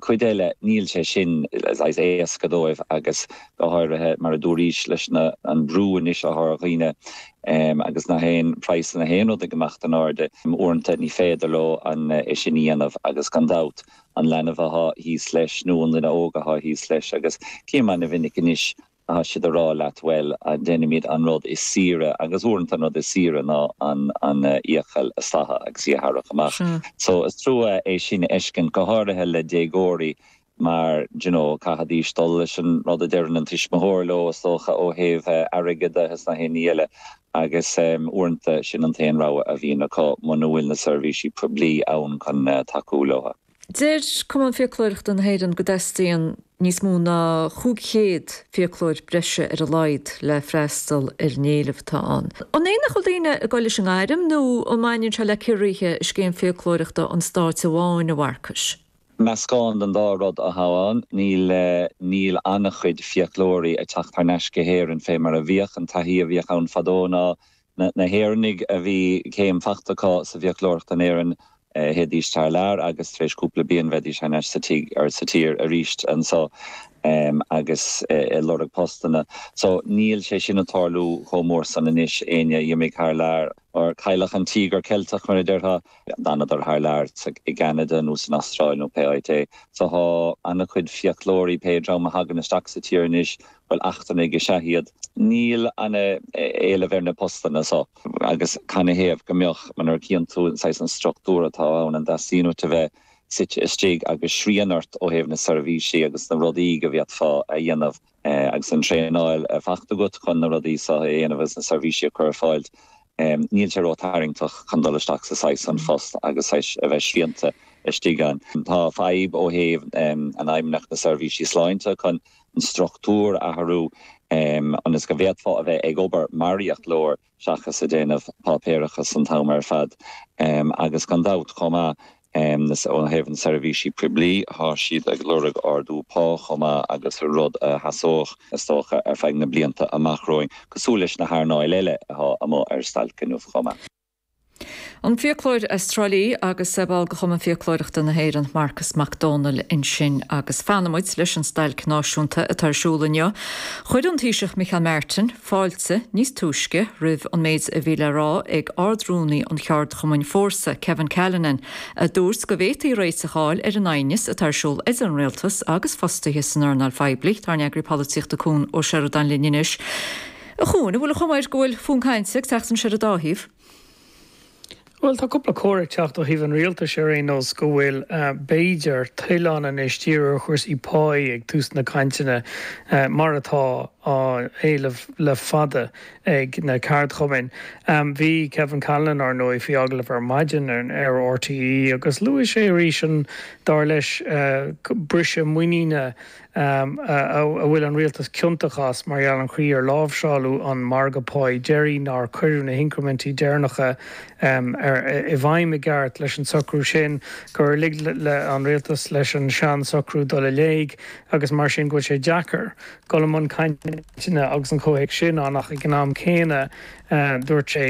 cuid eile níl sé sin saghas éasca dóibh agus go háirithe mar a dúraís leis an an brú anois atá ar dhaoine agus na haon praghsanna haon rud ag imeacht in airde uaireanta ní féidir leo ach é sin a dhéanamh agus gan dabht an leanbh atá thíos leis nó an duine óg atá thíos leis agus cé mhéid an mhinic anois Tá siad ag rá leat, bhuel, déanfaimid an rud is saoire, agus uaireanta an rud is saoire ná an fhiacail a stathadh agus í a tharrac amach. So, is trua é sin a fheiscint, go háirithe le déagóirí mar, do you know, caithfidh siad dul leis an rud a deireann an tuismitheoir leo, is dócha, ó thaobh airgead de is nach aon ní eile. Agus uaireanta sin an t-aon rogha a bhíonn acu, muna bhfuil na seirbhísí poiblí ann chun tacú leo. Deir Cumann Fiaclóireachta na hÉireann go dteastaíonn níos mó ná 500 fiaclóir breise ar a laghad le freastal ar an éileamh atá ann. An é nach bhfuil daoine ag dul leis an ngairm nó an mbaineann sé le ciorruithe i scéim fiaclóireachta an stáit amháin, a Mharcais? Meascán den dá rud, a Chuain. Níl, níl an-chuid fiaclóirí ag teacht thar n-ais go hÉirinn fé mar a bhíodh. An taithí a bhíodh ann fadó ná Na hÉireannaigh a bhí céim faighte acu sa bhfiaclóireacht in Éirinn, théidís thar lear agus tar éis cúpla bliain bheidís thar n-ais sa tigh, or sa tír, arís anseo agus ag lorg postanna. So, níl sé sin ag tarlú chomh mór san anois, éinne a dh'imigh thar lear, ó cailleadh an Tíogar Ceilteach mar a déarfá. D'fhanadar thar lear, i gCeanada nó san Astráil nó pé áit é. So tá ana-chuid fiaclóirí, pé dream a thagann isteach sa tír anois, bhuel, eachtrannaigh is ea iad. Níl ana-éileamh ar na postanna so agus canathaobh go mbeadh nuair a chíonn tú an saghas, an structúr atá ann, an dteastaíonn uait a bheith suite istigh agus srian ort ó thaobh na seirbhísí agus na rudaí go bhféadfá a dhéanamh. Agus an traenáil fachta agat chun na rudaí seo a dhéanamh agus na seirbhísí a chur ar fáil, níl sé ró-tharraingteach chun dul isteach sa saghas san phost agus saghas a bheith srianta istigh ann. Tá fadhb ó thaobh an Fheidhmeannacht na Seirbhísí Sláinte chun an struchtúr a athrú ionas go bhféadfá a bheith ag obair mar fhiaclóir. seachas ag déanamh páipéarachas an t-am ar fad agus gan dabht chomh maith ó thaobh na seirbhísí poiblí, tá siad ag lorg ardú pá chomh maith agus rud a sheasódh is dócha ar feadh na blianta amach romhainn, cosúil leis na hearnáil eile atá amuigh ar stailc inniu chomh maith. An fiaclóir as Trá Lí agus é mar bhall de Chumann Fiaclóireachta na hÉireann, Marcus Mac Domhnaill ansin agus fanfaimid leis an stailc náisiúnta atá ar siúl inniu. Chuir an Taoiseach Micheál Martin fáilte níos túisce roimh an méid a bhí le rá ag Ard-Rúnaí an cheardchumainn Fórsa, Kevin Callinan, a dúirt go bhféadfaí réiteach a fháil ar an aighneas atá ar siúl idir an Rialtas agus fostaithe san earnáil phoiblí. Tá ár n-eagarthóir polaitíochta Cuan Ó Seireadáin linn anois. A Chuan, an bhfuil an chuma air go bhfuil fonn cainte ag teacht anois ar an dá thaobh? Bhuel, tá cúpla comhartha ag teacht ó thaobh an rialtais ar aon nós go bhfuil, b'fhéidir, toil ann anois díriú ar chúrsaí páí ag tús na cainteanna, mar atá á éileamh le fada ag na ceardchumainn. Bhí Kevin Callinan, ar ndóigh, faoi agallamh ar maidin ar RTÉ agus luaigh sé arís an, dar leis, briseadh muiníne a bhfuil an rialtas ciontach as mar gheall ar an gcaoi ar láimhseáladh an margadh páí deiridh, nár cuireadh na hincrimintí deireanacha i bhfeidhm i gceart leis an socrú sin, gur lig an rialtas leis an sean-socrú dul in éag agus mar sin go bhfuil sé deacair dul i mbun cainteanna agus an comhthéacs sin ann ach ag an am céanna dúirt sé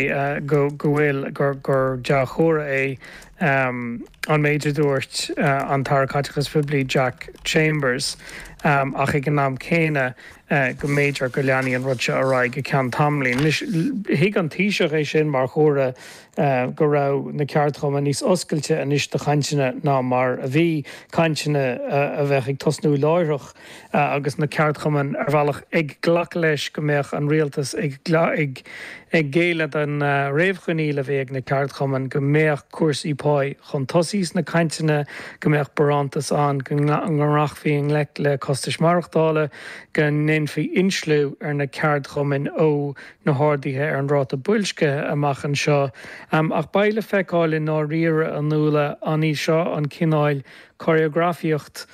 go bhfuil gur dea-chomhartha é um an méid a dúirt an tAire Caiteachais Phoiblí Jack Chambers um ach ag an am céanna uh go mb'fhéidir go leanfaidh an rud seo ar aghaidh go ceann tamaillín. Anois, thuig an Taoiseach é sin mar chomhartha uh go raibh na ceardchumainn níos oscailte anois do chainteanna ná mar a bhí, cainteanna uh a bheadh ag tosnú láithreach. agus na ceardchumainn ar bhealach ag glacadh leis go mbeadh an rialtas ag géilleadh don réamhchoinníoll a bhí ag na ceardchumainn go mbeadh cúrsaí páí chun tosaigh sna cainteanna, go mbeadh barántas ann go rachfaí i ngleic le costais maireachtála, go ndéanfaí insliú ar na ceardchumainn ó na harduithe ar an ráta boilscithe amach anseo. Ach beidh le feiceáil i ndáiríre an bhfuil an í seo an cineál córagrafaíocht,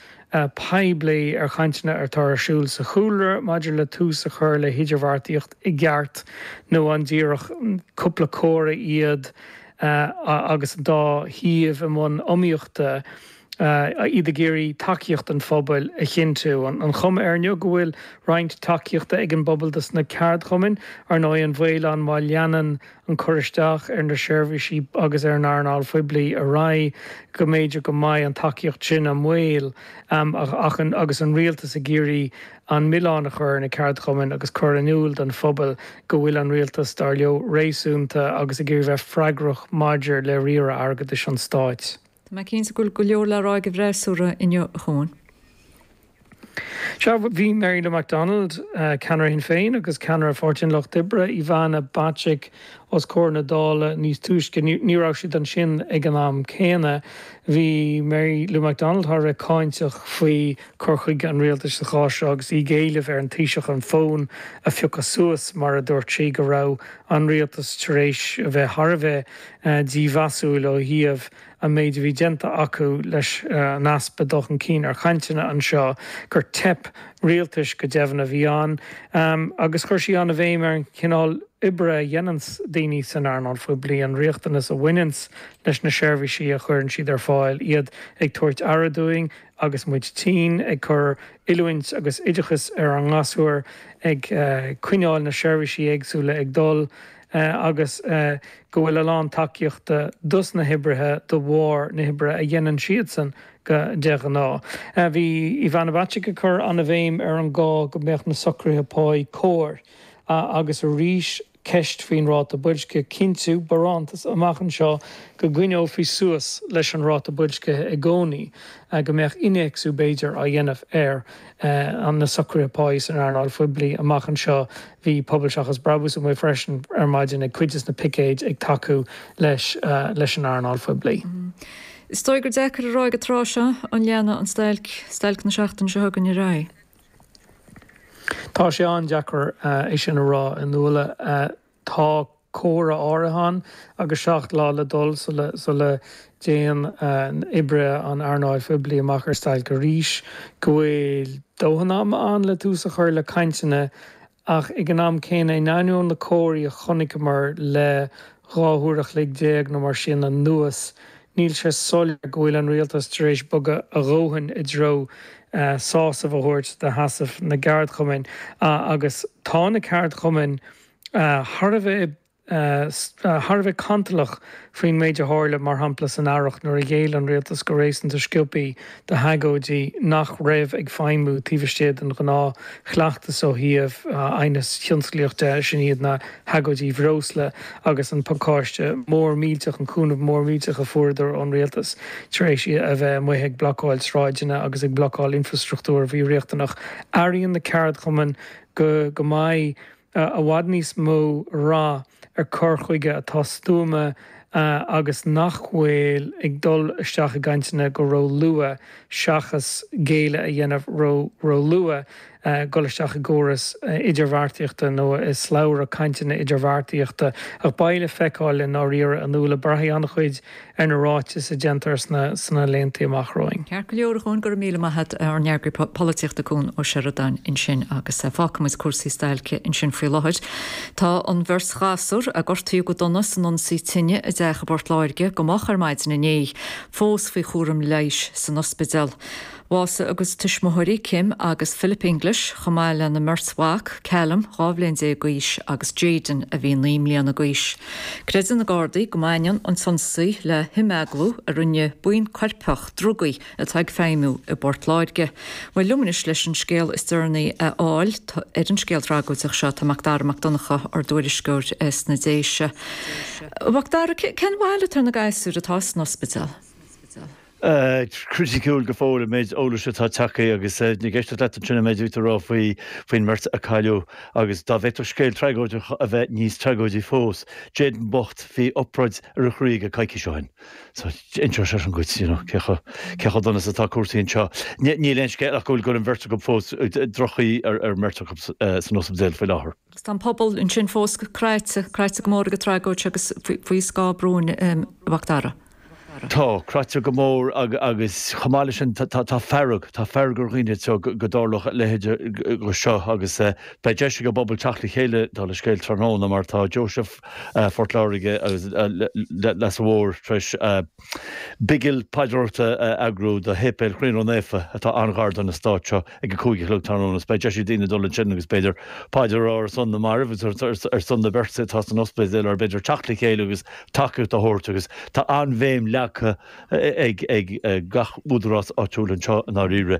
poiblí ar chainteanna atá ar siúl sa chúlra maidir le tús a chur le hidirbheartaíocht i gceart nó an díreach cúpla comhartha iad agus an dá thaobh i mbun iomaíochta, iad ag iarraidh tacaíocht an phobail a chinntiú. An chuma air inniu go bhfuil roinnt tacaíochta ag an bpobal dos na ceardchumainn, ar ndóigh, an baol ann má leanann an cur isteach ar na seirbhísí agus ar an earnáil phoiblí ar aghaidh, go mb'fhéidir go mbeidh an tacaíocht sin i mbaol ach agus an Rialtas ag iarraidh an milleán a chur ar na ceardchumainn agus cur in iúl don phobal go bhfuil an Rialtas, dar leo, réasúnta agus ag iarraidh bheith freagrach maidir le riaradh airgeadais an Stáit. Tá mé cinnte go bhfuil go leor le rá ag an bhfreasúra inniu a Chuan. Sea, bhí Mary Lou McDonald, ceannaire Shinn Féin agus ceannaire Pháirtí an Lucht Oibre, Ivana Bacik os comhair na Dála níos túisce. Ní raibh siad ansin ag an am céanna. Bhí Mary Lou McDonald thar a bheith cáinteach faoi chur chuige an rialtais sa chás seo agus í ag éileamh ar an Taoiseach an fón a phiocadh suas mar a dúirt sí go raibh an rialtas tar éis a bheith thar a bheith dímheasúil ó thaobh an méid a bhí déanta acu leis an easpa dul chun cinn ar chainteanna anseo, gur teip rialtais go deimhin a bhí ann agus chuir sí an-bhéim ar an chineál oibre a dhéananns daoine san earnáil phoiblí, an riachtanas a bhaineanns leis na seirbhísí a chuireann siad ar fáil, iad ag tabhairt aire dúinn agus muid tinn, ag cur oiliúint agus oideachas ar ár ngasúir, ag coinneáil na seirbhísí éagsúla ag dul. agus go bhfuil a lán tacaíochta dos na hoibrithe de bharr na hoibre a dhéanann siadsan de ghnáth. Bhí Ivana Bacik ag cur an-bhéim ar an gá go mbeadh na socruithe pá cóir agus arís ceist faoin ráta boilscithe, cinntiú, barántas amach anseo go gcoinneofaí suas leis an ráta boilscithe i gcónaí, go mbeadh innéacsú b'fhéidir á dhéanamh ar na socruithe pá san earnáil phoiblí amach anseo. Bhí Pobal Seachas Brabús amuigh freisin ar maidin ag cuid des na picéid ag tacú leis an earnáil phoiblí. Is dóigh gur deacair a rá ag an tráth seo an leanfaidh an stailc, stailc na seachtaine seo chugainn, ar aghaidh. Tá sé an-deacair é sin a rá, a Nuala. Tá comhartha áirithe ann agus seacht lá le dul sula dtéann oibrithe an earnáil phoiblí amach ar stailc arís, go bhfuil dóthain ama ann le tús a chur le cainteanna ach ag an am céanna, in ainneoin na comharthaí a chonaiceamar le dhá huair a chloig déag nó mar sin anuas, níl sé soiléir go bhfuil an rialtas tar éis bogadh a dhóthain i dtreo sásamh a thabhairt do sheasamh na gceardchumainn agus tá na ceardchumainn thar a bheith cantalach faoin méid a tharla, mar shampla, san earrach nuair a ghéill an rialtas go réasúnta sciobtha d'agóidí nach raibh ag feidhmiú taobh istigh den ghnáthchleachtas ó thaobh aighneas thionsclaíoch de, sin iad na hagóidí bhreosla agus an pacáiste mór millteach, an cúnamh mór millteach a fuaireadar ón rialtas tar éis a bheith amuigh ag blocáil sráideanna agus ag blocáil infreastruchtúir a bhí riachtanach. Airíonn na ceardchumainn go mbeidh. i bhfad níos mó rath ar chur chuige atá stuama agus nach bhfuil ag dul isteach i gcainteanna go ró luath seachas géilleadh a dhéanamh ró ró luath dhul isteach i gcóras idirbheartaíochta nó i slabhra cainteanna idirbheartaíochta ach beidh le feiceáil i ndáiríre a Nuala, braithfidh an-chuid ar na ráitis a dhéantar sna laeantaí amach romhainn. Ceart go leor a Chuain, go raibh míle maith a't, ár n-eagraí polaitíochta Cuan Ó Seireadáin ansin agus fágfaidh muid cúrsaí stailce ansin faoi láthair. Tá an bheirt ghasúr a gortaíodh go dona san ionsaí tine i dteach i bPort Laoise go moch ar maidin inné, fós faoi chúram leighis san ospidéal. Bhásaigh a gcuid tuismitheoirí Kim agus Philip English, chomh maith lena mbeirt mhac, Callum, 12 bhliain d'aois, agus Jayden, a bhí 9 mbliana d'aois. Creideann na Gardaí go mbaineann an t-ionsaí le himeaglú a rinne buíon coirpeach drugaí atá ag feidhmiú i bPort Láirge. Bhuel, liom anois leis an scéal is deireanaí a fháil ar an scéal tragóideach seo, tá Macdara Mac Donncha, ár dtuairisceoir sna Déise. Macdara, cén bhail atá ar na gasúir atá san ospidéal? criticiúil go fóill an méid eolais atá ag teacht chuige agus ag éisteacht leat ansin, an méid a bhí tú a rá faoin mbeirt a cailleadh agus dá bhféadfadh scéal tragóideach a bheith níos tragóidí fós, Jayden bocht, bhí obráid ar a chroí aige coicís ó shin. So, inseoidh sé sin duit you know cé chomh, cé chomh dona is atá cúrsaí anseo. Ní, níl aon scéal ach go bhfuil, go bhfuil an bheirt acu fós, droch-chaoi ar an mbeirt acu san ospidéal faoi láthair. Agus tá an pobal ansin fós cráite, cráite go mór ag an tragóid seo agus faoi scáth bróin, a Mhacdara. Tá. Cráite go mór agus chomh maith le sin tá fearg. Tá fearg ar dhaoine anseo go dtarlódh a leithéid de seo agus beidh deis ag an bpobal teacht le chéile dála an scéil tráthnóna mar tá Deoise Phort Láirge agus Leasa Mhóir tar éis bigil paidreoireachta a eagrú do shéipéal Chroí Ró Naofa atá an-ghar don eastát seo. ag a cúig a chlog tráthnóna is beidh deis ag daoine dul ansin agus b'fhéidir paidir a rá ar son na mairbh agus ar son na beirte atá san ospidéal or b'fhéidir teacht le chéile agus tacaíocht a thabhairt agus tá an-bhéim leagtha ag gach údarás áitiúil anseo i ndáiríre.